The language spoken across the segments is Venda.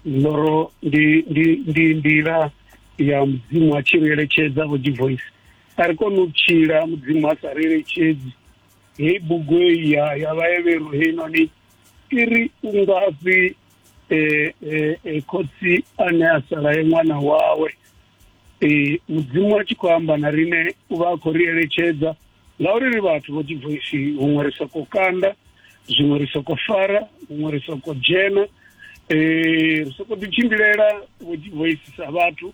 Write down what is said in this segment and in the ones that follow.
loro ndi ndi ndi nḓila ya mudzimu a tshi ri eletshedza vho divoice a ri kone u tshila mudzimu a sa ri eletshedzi heyi bugu heyi ya ya vhaevhero heinoni i ri u ngafhi um khotsi ane a sala ye ṅwana wawe ee mudzimu a tshi khou amba na rine u vha a khou ri eletshedza ngauri ri vhathu vho dzivoisi huṅwe ri soko kanda zwiṅwe ri soko fara huṅwe ri soko dzhena eh ri soko ḓi tshimbilela vho dzivoisi sa vhathu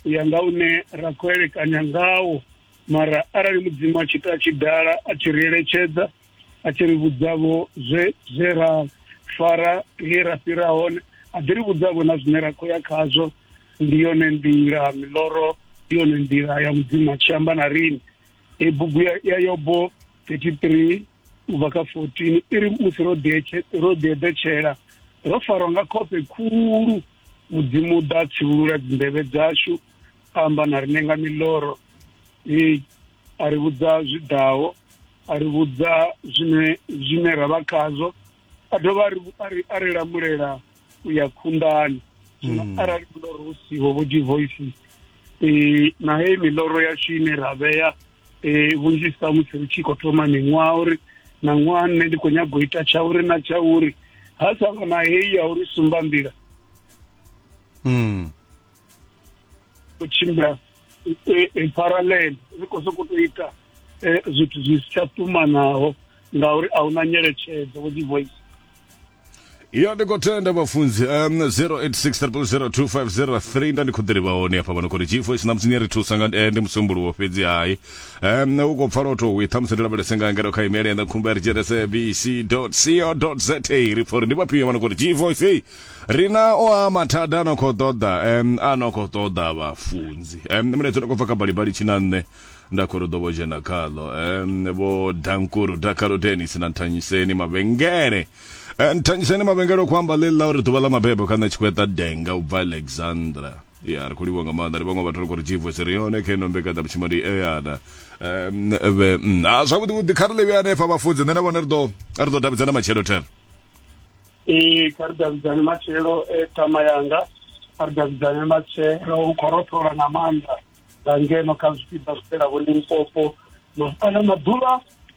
u ya nga une ra khou elekanya ngawo mara arali mudzimu a tshi ita a tshi dala a tshi ri eletshedza a tshi ri vhudzavho zwe zwe ra fara he ra fhira hone a ḓi ri vhudzavho na zwine ra khou ya khazwo ndi yone nḓila miloro ndi yone nḓila ya mudzimu a tshi amba na rini e bugu ya yobo 33 u bva kha 14 i ri musi ro ḓieḓetshela ro farwa nga khofhe khulu mudzimu ḓa tsivhulula dzinḓevhe dzashu amba na rine nga miloro a ri vhudza zwi ḓaho a ri vhudza zwine zwine ra vha khazwo a dovha a ri a ri a ri lamulela u ya khunḓani zwino mm. arali miloro hu siho vho divoice um eh, na heyi miloro yashu ine ra vhea um vhunzhi sa musi ri tshi khou thoma miṅwaha uri na ṅwaha nne ndi khou nyago ita tsha uri na tsha uri ha sa vha na heyi ya uri sumba nḓila mm. u tshimbila in parallel ri khou sokou tou ita zwithu zwi si tsha ṱumanaho ngauri a huna nyeletshedzo vho dzi voice ya ndi khou tenda vhafunzi um 0860002503 nda ndi khou ḓirivha hone hafha vhano khori gfo tshi ṋamusi ni ri thusa nga eh, ndi musumbuluwo fhedzi hai um u khou pfa lotho wi ṱhamusi ndi lavhelese nga ngero kha imele yanga khumba ri dzhenese bc co za ri pfa uri ndi vhafhio vhano khori gfo ri na o a mathada a no khou ṱoḓa um a no khou ṱoḓa vhafunzi um nṋe muletso ndi khou bva kha balibali tshina nṋe nda khou ri ḓo vho dzhena khaḽo um vho dankuru dakalo denis na nthanyiseni mavhengele um nthanyiseni mavhengele khou amba ḽeḽi ḽa uri ḓuvha ḽa mabebo kha nṋe tshi khou eṱa denga u bva alexandra ya ri khou livha nga maanḓa ri vhaṅwe vhathu ri khou ri jivos ri yone kha ino mbekanya vhutshimo ndi eana um vhe mm, a zwavhuḓi vhuḓi kha ri ḽivhe hanefha vhafunzi nṋe na vhone ri ḓo ri ḓo davhidzana matshelo thero Ee, kha ri davhidzane matshelo e ṱhama yanga kha ri davhidzane matshelo u khou rothola nga maanḓa nga ngeno kha zwipiḓa zwi fhelaho limpopo kana maḓuvha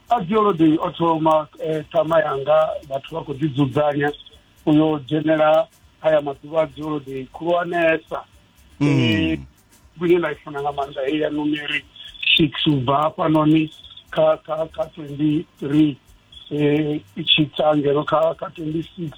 a dziolodei o thoma ṱhama yanga vhathu vha khou ḓidzudzanya u yo dzhenela haya maḓuvha a dziolodei khulwanesa ine nda i funa nga maanḓa heyi ya numeric six u bva hafhanoni kha kha kha twenty three um i tshi tsa ngeno kha kha twenty six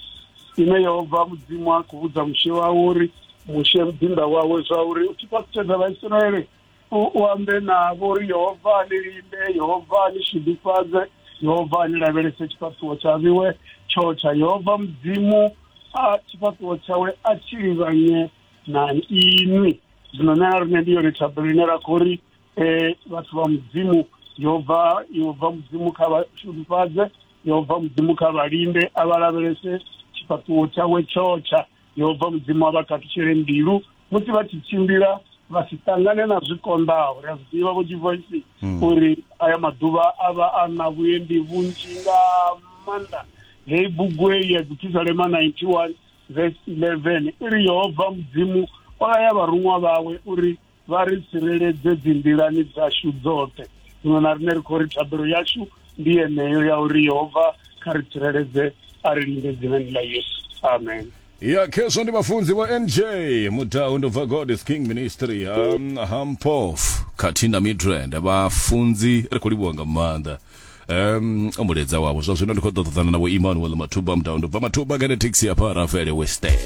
ine yo bva mudzimu a khou vhudza mushe wawe uri mushe muḓinda wawe zwa uri u tshi fhasitshedza vhaisraele u ambe navho uri yehova ni linde yehova ni shudufhadze yehova ni lavhelese tshifhaṱuwo tsha vhiwe tsho tsha yehova mudzimu a tshifhaṱuwo tshawe a tshi livhanye na inwi zwino nṋe na rine ndi yone thabelo ine ra khou ri um vhathu vha mudzimu yo bva yo bva mudzimu kha vha shudufhadze yo bva mudzimu kha vha linde a vha lavhelese tshifhaṱuwo tshawe tshotsha yo bva mudzimu a vha khathutshele mbilu musi vha tshi tshimbila vha si ṱangane na zwi konḓaho ri a zwi ḓivha vho jivoisi uri aya maḓuvha a vha a na vhuendi vhunzhi nga maanḓa heyi bugu heyi ya dzithisalema 91 verse 11 i ri yehova mudzimu o laya vharuṅwa vhawe uri vha ri tsireledze dzinḓilani dzashu dzoṱhe zwino na rine ri khou ri thabelo yashu ndi yeneyo ya uri yehova kha ri tsireledze a ri linde dzinani ḽa yesu amen ya khezwo ndi vhafunzi vho nj mudau ndo bva god is king ministry um, hampof khathihi na midrand vhafunzi ri khou livhuwa nga maanḓa um o muledza wavho zwa zwino ndi khou ḓo ṱoḓana na vho immanuel mathuba mudau ndo bva mathuba kene taxi ya pharafele weste